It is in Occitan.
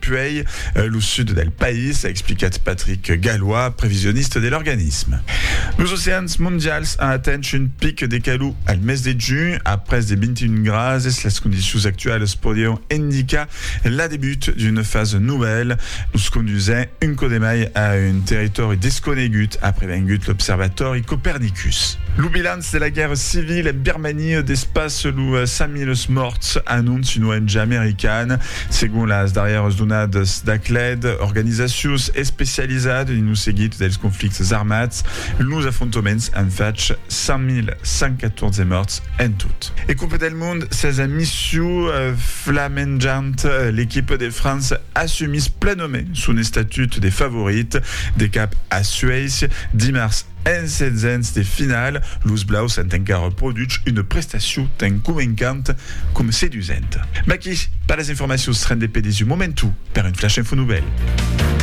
puèi lo sud del país, a explicat Patrick Gallois, previsionista de l'organisme. Los oceans mondials an atent un pic de calor al mes de junh, a pres de 21 grases. Las condicions actualas podián indicar la debut d'una fasa novèla, nos condusent un cò de mai a un territòri desconegut, a prevengut l'observatòri Copernicus. Lo bilanç de la guèrra civila en Birmania despasse los 100.000 mòrts, anonci una ong americana. Segon las darrièras donadas d'Acled, organizacions especializadas dins lo seguit dels conflictes armats, los afrontoments an fach 5.114 mòrts en tot. E Copa del Mond, sesa mission flamenjant, l'equipa de França assumís plenament son estatut de favorit de cap a Suècia dimars. En setzens de finala, los blaus an encara produch una prestacion tan convencanta coma sedusenta. Maquis per las informacions, rende pedis un momentu per un flash info novèl.